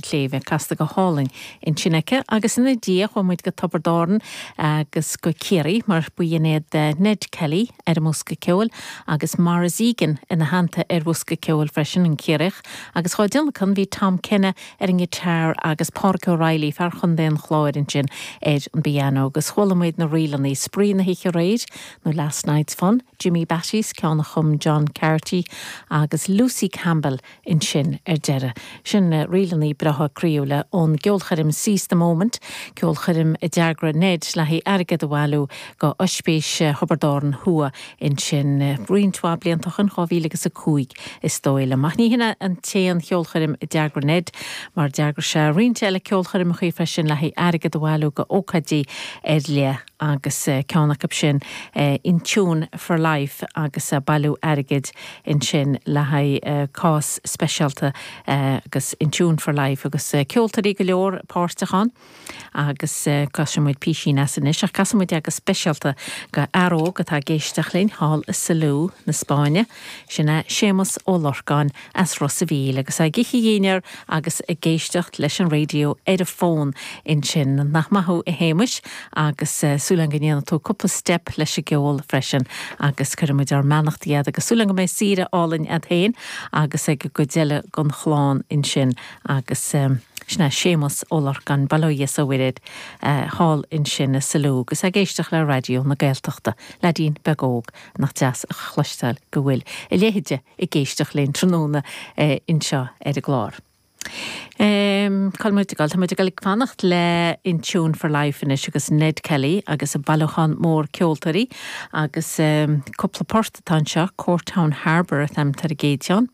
tsléibhe casta go hálainn ansin aici agus ina diaidh chuaigh muid go Tiobraid Árann agus go Ciarraí mar b'in é Ned Kelly ar an mbosca ceoil agus Maurice Egan ina theannta ar bhosca ceoil freisin, an Ciarraíoch, agus dhá dtionlacan bhí Tom Kenny ar an ngiotár agus Pádraic O'Reilly, fear Chontae an Chláir ansin, ar an bpianó agus chuala muid na ríleanna, Spraoi na hOíche Aréir nó Last Night's Fun, Jimmy Batty's ceann a chum John Carty agus Lucy Campbell, ansin ar deireadh. Sin na ríleanna breátha croíúla ón gceolchoirm Seize the Moment, ceolchoirm a d'eagraigh Ned le haghaidh airgead a bhailiú go Oispís Thiobraid Árann Thuaidh ansin roinnt mhaith blianta ó shin, 2005 is dóigh liom. Ach ní hin an t-aon cheolchoirm a d'eagraigh Ned mar d'eagraigh sé roinnt eile ceolchoirmeacha freisin, le haghaidh airgead a bhailiú go ócáidí ar leith. agus ceann acu sin In Tune for Life agus ag bailiú airgid ansin le haghaidh cás speisialta agus In Tune for Life agus ceoltóirí go leor páirteach ann agus cloisfidh muid písín as anois ach casfaidh muid go speisialta go fhear óg atá ag éisteacht linn thall i Salou na Spáinne, sin é Séamus Ó Lorcáin. as Ros a' Mhíl agus ag ithe a dhinnéar agus ag éisteacht leis an radio ar an bhfón. Ansin, nach maith thú a Shéamais, agus súil a'm go ndéanfaidh tú cúpla step leis an gceol freisin agus cuirfidh muid ár mbeannachtaí chugat agus súil a'm go mbeidh saoire álainn a'd féin agus ag an gcuid eile den chlann ansin agus sin é Séamas Ó Lorcáin, bail ó Dhia is ó Mhuire ort, thall ansin i Salou agus ag éisteacht le Raidió na Gaeltachta. Leaidín beag óg nach deas a chloisteáil go bhfuil a leithéid de. ag éisteacht linn tráthnóna anseo ar an gclár. Cá muid ag dul? Tá muid ag fanacht le In Tune for Life anois agus Ned Kelly agus a bhailiúchán mór ceoltóirí agus cúpla port atá anseo, Courtown Harbour an t-ainm atá ar an gcéad cheann,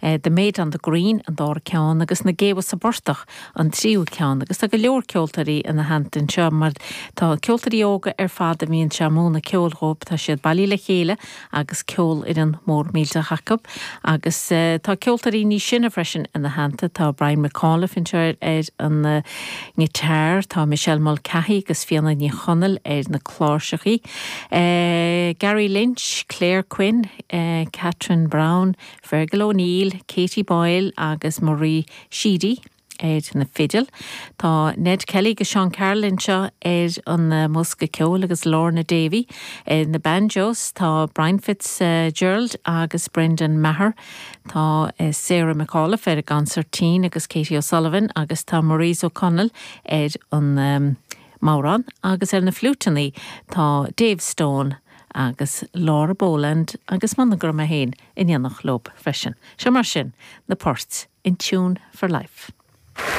The Maid on the Green an dara ceann agus Na Géabha sa bPortach an tríú ceann agus tá go leor ceoltóirí ina theannta anseo mar tá ceoltóirí óga ar fad a bhíonn sé a mhúnadh ceoil dhóibh, tá siad bailithe le chéile agus ceolfhoireann mhór mhillteach acu agus tá ceoltóirí níos sine freisin ina theannta. Tá Brian McAuliffe anseo ar an ngiotár, tá Michelle Mulcahy agus Fiona Ní Chonaill ar na cláirseachaí, Gary Lynch, Claire Quinn, Catherine Browne, Fergal O'Neill, Katie Boyle agus Marie Sheedy ar na fidil. Tá Ned Kelly agus Seán Carroll anseo ar an mbosca ceoil agus Lorna Davey ar na banjos. Tá Brian Fitzgerald agus Brendan Maher. Tá Sarah McAuliffe ar an gconsairtín agus Katie O'Sullivan agus tá Maurice O'Connell ar an mbodhrán agus ar na fliúiteanna tá Dave Stone agus Laura Boland agus monagram 1. in éineacht leo freisin. Seo mar sin na poirt in Tune for Life.